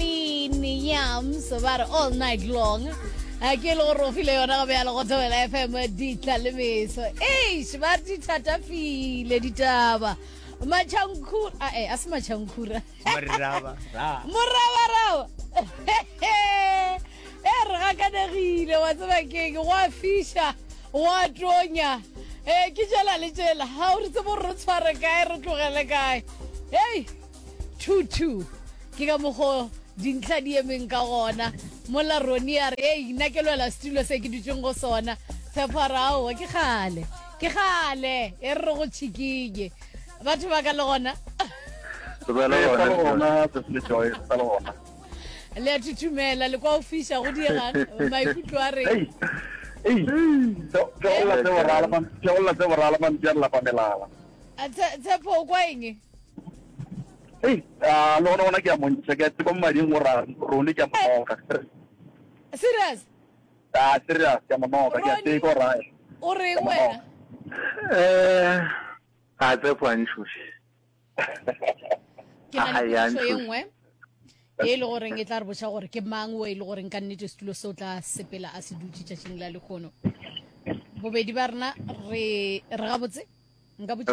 Bean Yams ba re all night long a ke e le gore o file yona go bjalo go thobela fm ditla le meso eish ba re di thatafile ditaba matšhankhura ae a se matšhankhura Moraba, ra. morabaraba e re gakanegile wa tseba keng gwa fiša gwa tonya um ke jela le jela ga o re tsebo re tshware kae re tlogele kae hei 2 2 ke ka mogo dintlha di emeng ka gona mola roni a re ei nna ke lwela setulo se ke dutseng go sona tshepo a re aowa ke gale ke gale e re go tšhikinye batho ba ka le gona le a thuthumela le kwa o fiša go diegang maikutlo a re tshepo o kwa eng Hey, ah, le gona gona ke a montšha ke a tseba mo mading go ra rone ke a monoka serious a ah, serious ke a monoka ke a tseye ko raya o reng wena eh a tse kwa ntšhoši ke na le potso e nngwe e le goreng e tla re boša gore ke mang o e le goreng ka nnete setulo se o tla sepela a se dutse tšatšing la lekgono bobedi ba rena re re gabotse nka botsa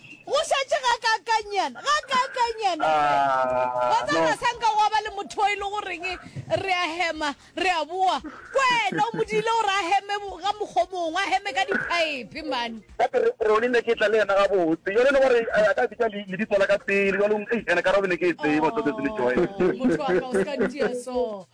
Go šetše gakaakanyana, gakaakanyana fela. Wa tseba, sa nka gwa ba le motho o e le goreng re a hema, re a boa. Kwena o mo diile gore a heme ka mokgwa o mongwe, a heme ka diphaephe, man. Gate re, re o ne ke tla le yena gabotse. Jwale e le gore a ka bitša le, lebitso la ka pele, jwanong, ei, ene ka re o be ne ke e tseba, Tsotsi le Joel. Oh, motho wa ka, o se ka ntia so.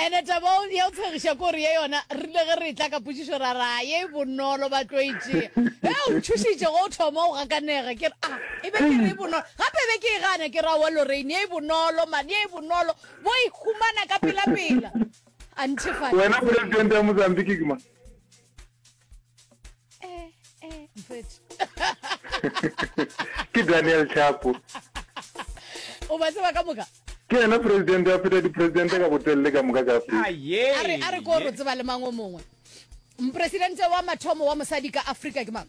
Ene taba ya o tshegiša ko re ye yona rile ge re tla ka pušišo ra ra ye e bonolo ba tlo itsea e o ntšhušitše go thoma o gakanega ke re a e be ke re e bonolo gape e be ke e gana ke ra wa loreine ye e bonolo mane ye e bonolo bo e humana ka pelapela a nthefatša wena presidente ya mozambique kima eh eh mfethu ke daniel chapo o ba tseba ka moka ke yena presidente a feta dipresidente ka botelele ka moka ka afrika a re ko re tseba le mang o mongwe mopresidente wa mathomo wa mosadi ka afrika ke mang